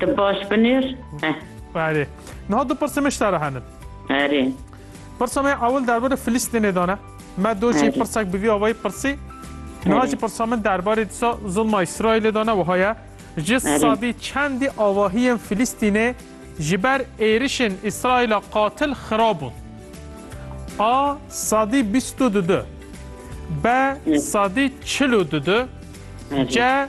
Tu baş binêr. Heh. Erê. Niha du pirsê min ji te re hene. Erê. Pirsa me ya ewil derbarê Filîstînê de ne. Me doh jî pirsek bi vî avayî pirsî. Niha jî pirsa min derbarê disa zilma Îsraîlê de ne wiha ye. Ji sedî çendî avahiyên Filîstînê ji ber êrişên Îsraîla qatil xira bûn. A sedî bîst û du du. B sedî çil û du du. C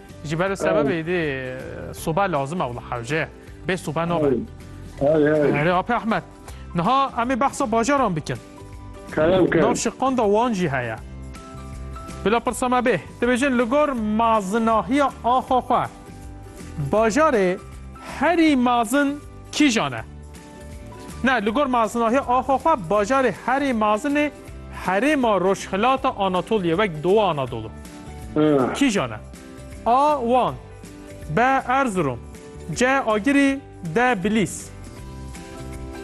Ji ber sebebê dê soba lazim e wla hewce. Bê soba nabe. Erê Apê Ahmet. Niha em ê behsa bajaran bikin. Nav şiqan da wan jî heye. Bila pirsa me bê. Dibêjin li gor mazinahiya axa xwe. Bajarê herî mazin kîjan e? Ne, li gor mezinahiya axa xwe bajarê herê mezin ê herêma rojhilata Anatoliyê wek Dowa Anadolu. Kîjan e? A Wan B Erzurum C Agirî D Bilîs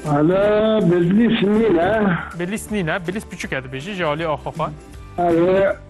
Ala Bilîs nîne. Bilîs nîne, Bilîs piçûk e dibêjî ji aliyê axa xwe. Ew ê.